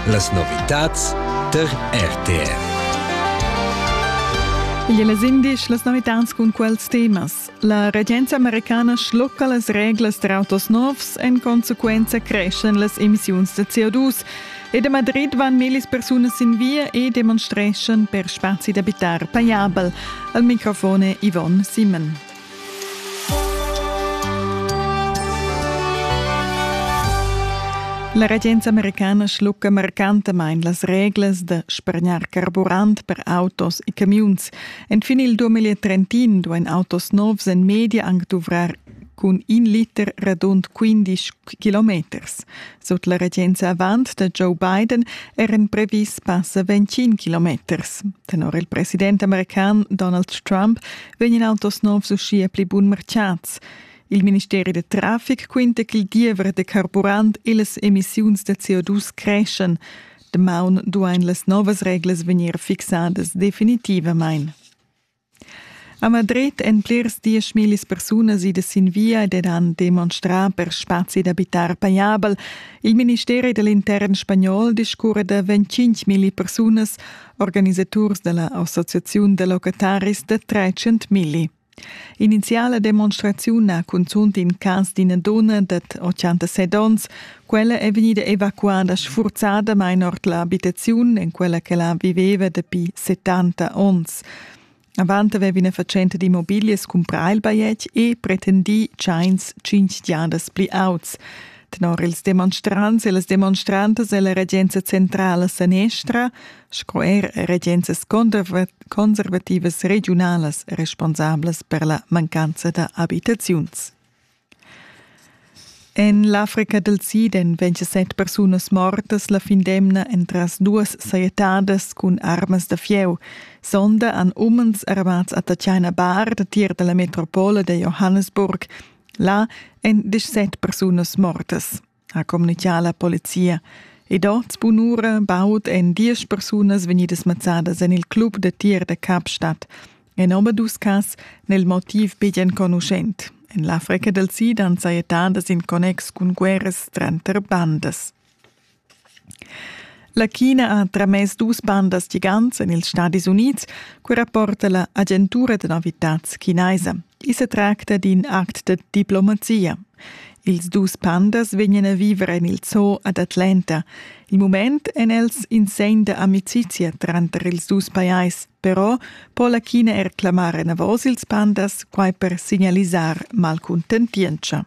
Las novitads tar RTR. Igl è las indisch las novitads cun quels temas. La regenza americana schlocca las reglas per autos novs, en consequenza creschen las emissiuns da CO2. Ed a Madrid van millis persunas sin via e demonstreschan per spazi d'abitar pajabel. Al microfon è Yvonne Simon. La regenza americana schlucca marcantamain las reglas da spargnar carburant per autos e camiuns. Enfin il 2030 duain autos novs en media anc duvrar cun in liter radund 15 kilometers. Sut la regenza avant da Joe Biden eran previs passa 25 kilometers. Tenor il president american Donald Trump vegnan autos novs uschia pli bun marchats. Il ministeri da traffic quinta ch'il diever da carburant e las emissiuns da CO2 creschan. Damaun duain las novas reglas vegnir fixadas definitivamain. A Madrid èn plirs dieschmillis persunas idas sin via ed han demonstrà per spazi d'abitar pajabel. Il ministeri da l'intern spagnol discurra da 25.000 persunas organisaturs dalla Associaziun da locataris da 300 milli. Iniziala demonstraziun ha cunzunt in cas d'ina donna dad 86 onns. Quella è vegnida evacuada sfurzadamain ord l'abitaziun en quella che la viveva dapi 70 onns. Avant aveva ina fatschenta d'immobiglias cumprà il bajetg e pretendì tschains tschintg giadas pli auts. Tenor ils demonstrants e las demonstrantas è la regenza centrala sanestra sco er regenzas conservativas regiunalas responsablas per la mancanza da abitaziuns. En l'Africa dal Sid èn vintisset persunas mortas la fin d'emna entras duas sajettadas cun armas da fieu. Sonda han umens armads a Tatjana Bar, datier da la metropola da Johannesburg. Là èn disset persunas mortas. ha communitgà la polizia. Ed oz, bunura, baud èn diesch persunas vegnidas mazzadas en il club da tir da Kapstadt. En omadus cas nel motiv betg enconuschent. En l'Africa dal Sid han sajettadas in connex cun guerras tranter bandas. La China ha tramess dus bandas gigants en ils Stadis Unids, quai rapporta la agentura da novitads chinaisa. I sa tracta d'in act da diplomazia. Ils dus pandas vegnan a viver en il zoo ad Atlanta. Il mument èn els in segn da amicizia tranter ils dus pajais, però po la China er clamar enavos ils pandas, quai per signalisar malcuntentientscha.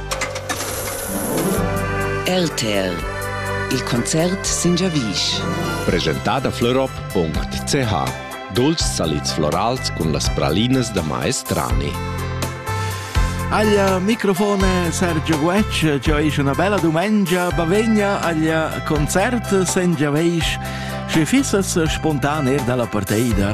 RTL Il concert sin giavisch. Presentada florop.ch Dulcis salids florals cun las pralinas da maestrani. Aglia microfone Sergio Guecc, ci hai una bella domenica, bavegna aglia concert sen giaveis, se fissas spontan er dalla parteida